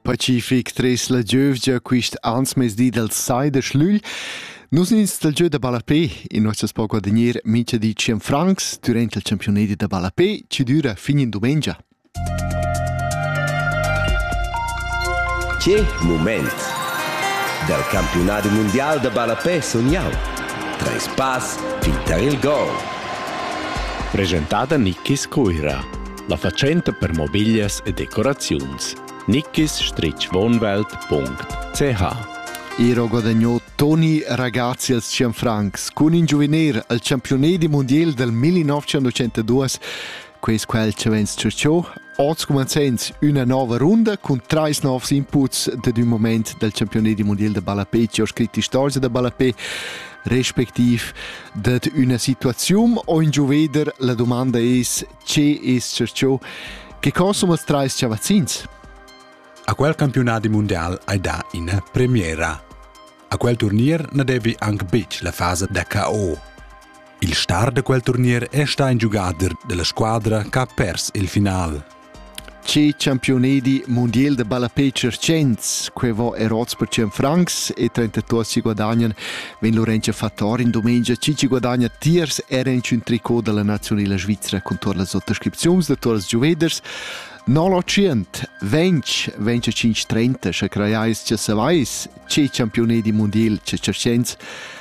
Pacific tres la giövgia quist ansmezdi dal sai da schlügl Nus ins dal giö da ballapé in nossas poco da gnir mincha di 100 francs durant il championadi da ballapé chi düra fin in dumengia. Che mument! Dal campionadi mundial da ballapé sun jau. Tres pass fin tar il gol. Presentada Nikis Coira. La fatschenta per mobiglias e decoraziuns nickisstrichwohnwelt.ch Ero guadagnò Toni Ragazzi als 100 francs cun in giuviner al campione di mondial del 1902 quest qual ci vens ciuciò Oz cumanzens üna nova runda cun treis novs inputs dad un moment del campione di mondial de ballapé ci ho scrit istorgia da ballapé respectiv dad üna situaziun o in giuveder la domanda es Che es ciò che consumas trais chavazzins? A quel campionat mondial hai dà ina premiera. A quel turnier na devi anche betg la fase da KO. Il star da quel turnier è stà in giugader della squadra che ha pers il final. Tgi champiunedi mundial da ballapè tschiertschens, quei vo er oz per 100 francs e 32 si guadagnan, vegn Lorenza Fattor in domenica Cici guadagna tiers era in un tricot dalla nazionala svizra con tur las autoscripziuns da turas giuveders. 0% 20 20 5 30 sche creiais che savais, tgi champiunedi mundial tschiertschens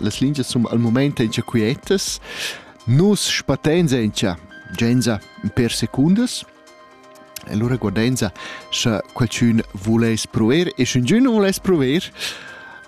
Las lingias sun al mumaint aint quietas. Nus spattains aint genza per secundas e lura guardainsa scha qualchün vuless pruver e sch'üngün nu vuless pruver,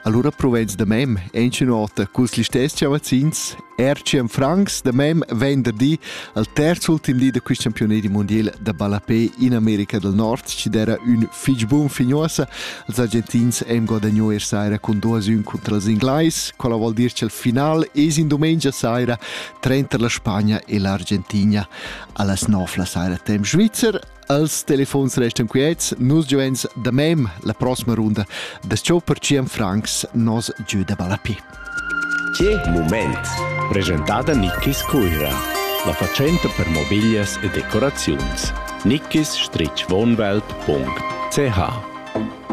alura pruvains da mem aint ün ota culs listess chavazzins. Ertschem francs da mem venderdi al terz ultim di da quist campiunedi mundiel da ballapè in America del Nord chi d'eira ün fich bun fignuossa Els Argentins hem guadagno er saira cun 2-1 contra els Inglais, quella vuol dir che il final es in domenica saira trenter la Spagna e l'Argentina. Allas 9 la saira tem Schweizer, Els telefons restan quiets, nus giovens da mem la prossima runda da ciò per Cian Franks nos giù da Balapi. Che moment! Presentata Nickis Cuira, la facenta per mobiglias e decoraziuns. Nickis-wohnwelt.ch